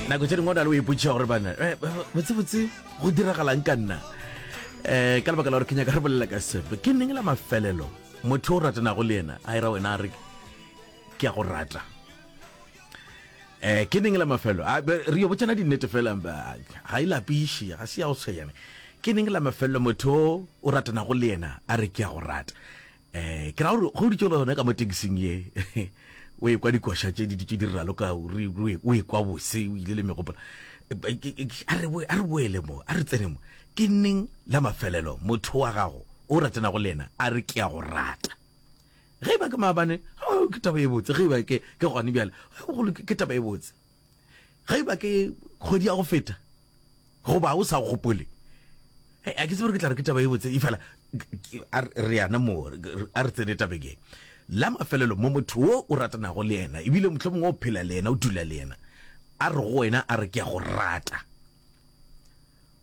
nako tse dingwe o na le o ipotšiša gore bana eh, botsebotse go diragalang ka nna um ka lebaka la gore ke nyaka re bolela ka sepe ke neng la mafelelo motho o ratanago le ena a era wena a re ke a go rata um ke neng la mafelo re yo botsana dinnete felang ga e lapiše ga se ya go tshwenyane ke neng la mafelelo motho o ratanago le ena a re ke a go rata um ke ra gore ge o ditše le gona ka mo tekising ye o e kwa dikoša tše di ditše di ralo ka o e kwa bose o ile le megopola a re boele mo a re tsene mo ke neng la mafelelo motho wa gago o ratenago le yena a re ke ya go rata ge e ba ke maabane ke taba e botse ge e ba ke gone bjale ke taba e botse Ga iba ke kgwedi ya go feta goba o sa gopole a ke tsebe ke tla re ke taba e botse e fela re yana mo a re tsene tabeng e la mafelelo mo motho o o ratanago le yena ebile motlho mongwe o phela le yena o dula le yena a re go wena a re ke ya go rata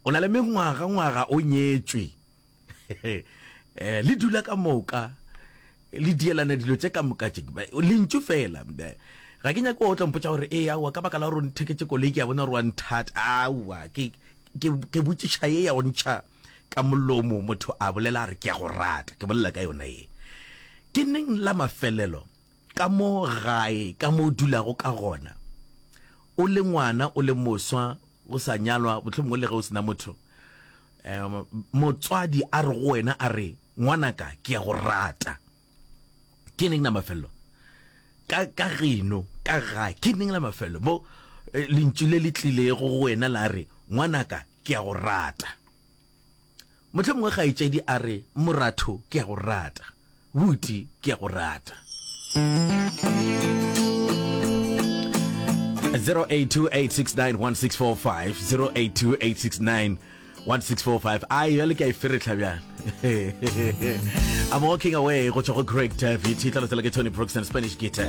o na le mengwaga ngwaga o nyetswe eh, le dula ka moka le dielana dilo tse ka moka tše lentšu fela ga ke nyako o tla mpotsa gore e aowa ka baka la gore o ntheketse koloi ke ya bona gore wa nthata aowa ke botšiša ye ya go ntšha ka molomo motho a bolela a re ke ya go rata ke bolela ka yona ye ke neng la mafelelo ka mo gae ka mo o dulago ka gona o le ngwana o le moswa o sa nyalwa botlhomong o le ge o sena motho Motswadi a re go wena, a re, Ngwanaka, ke a go rata. Ke neng la mafelelo? Ka, ka geno, ka ga, ke neng la mafelelo? Mo, eh, lentšu le le tlilego go wena la re, Ngwanaka, ke a go rata. Mohlomongwe kgaetšedi a re, Moratho, ke a go rata. Buti, ke a go rata. 0828691645 0828691645 a yo le ka iferetlha bjang I'm walking away go tswa go Craig David e tla lotsela ke Tony Brooks and Spanish Guitar